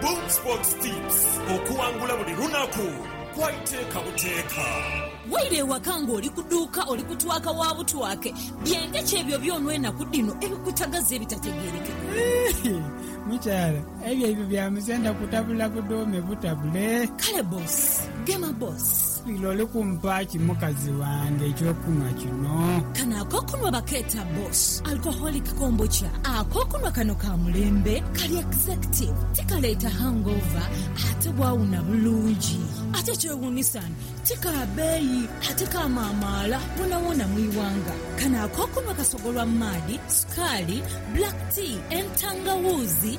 Boom Sports Tips, Okuwangula buli lunaku kwa iteeka buteeka. Waire ewaka ng'oli ku duuka, oli kutwaka wa butwake, byente ki ebyo byona enaku dhino ebikutagaza ebitategeerekeka? Mukyala, ebyo ebyo bya musenda kutabula budhuume butabule. Kale boss, gema boss. Lira oli kumpa ki mukazi wange eky'okunhwa kino? Kano ak'okunhwa bakeeta Boss Alcoholic Kombucha. Ak'okunhwa kano ka mulembe, kali executive, tikaleeta hangover ate bwawuna bulungi. Ate ekyewuunisa ni ti ka beeyi ate kamaamaala woonawoona mu ighanga. Kano ak'okunhwa kasogolwa maadhi, sukaali, black tea, entangawuuzi,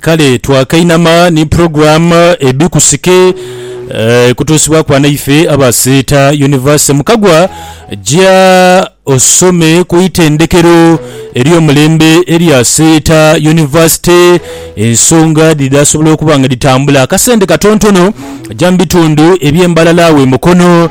Kale twakainama ni program Ebikusike eh, kutuusibwaku banaife aba Seeta University. Mukagwa ja osome ku itendekero ery'omulembe erya Seeta University. Ensonga dhidhasobola okuba nga dhitambula akasente katontono ja mu bitundu eby'e Mbarara awe Mukono.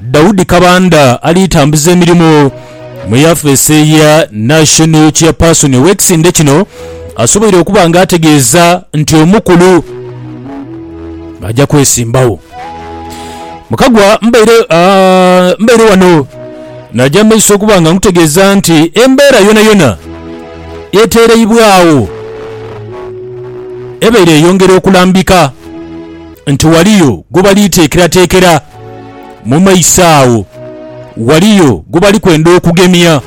Daudi Kabanda ali tambuza emirimu mu yafeesi ya National Chairperson ow'ekisinde kino asoboire okuba nga ategeeza nti omukulu aja kwesimbawo mu Kagwa. Mbaire mbaire wano naja mu maiso okuba nga nkutegeeza nti embeera yonayona eteereibwagho ebaire eyongera okulambika nti ghaliyo gwebali teekerateekera. Mu maiso agho ghaliyo gwe bali kwenda okugemya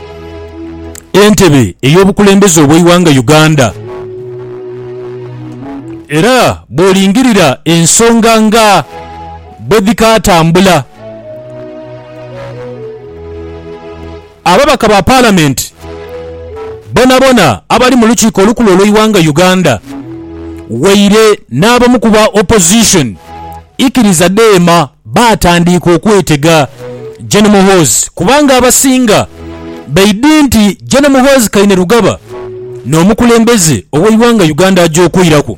entebe ey'obukulembeze obw'eighanga Uganda era bw'olingirira ensonga nga bwedhikaatambula, Ababaka ba Palamenti bonabona abali mu lukiiko olukulu olweighanga Uganda waire n'abamu ku ba Opposition ikiriza dheema baatandiika okwetega Gen Muhoozi kubanga abasinga baidhi nti Gen Muhoozi Kainerugaba n'omukulembeze ow'eighanga Uganda aja okwiraku.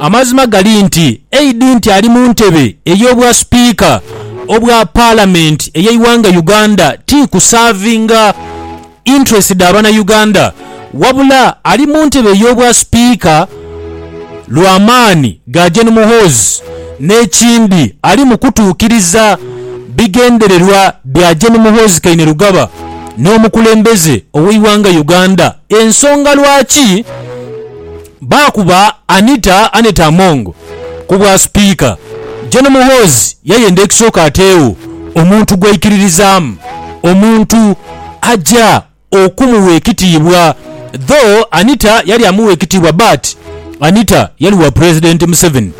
Amazima gali nti eidhi nti ali mu ntebe ey'obwa Sipiika obwa Palamenti ey'eighanga Uganda ti kusaavinga interest dha Banauganda wabula ali mu ntebe ey'obwa Sipiika lwa maani ga Gen Muhoozi n'ekindi ali mu kutuukiriza bigendererwa bya Gen Muhoozi Kainerugaba n'omukulembeze ow'eighanga Uganda ensonga lwaki Baakuba Anita Annet Among ku bwa Sipiika, Gen Muhoozi yayenda ekisooka ateegho omuntu gwaikiririzaamu, omuntu aja okumugha ekitiibwa though Anita yali amugha ekitiibwa but Anita yali wa Pulezidenti Museveni,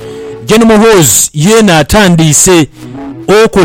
Gen Muhoozi yeena atandiise okola.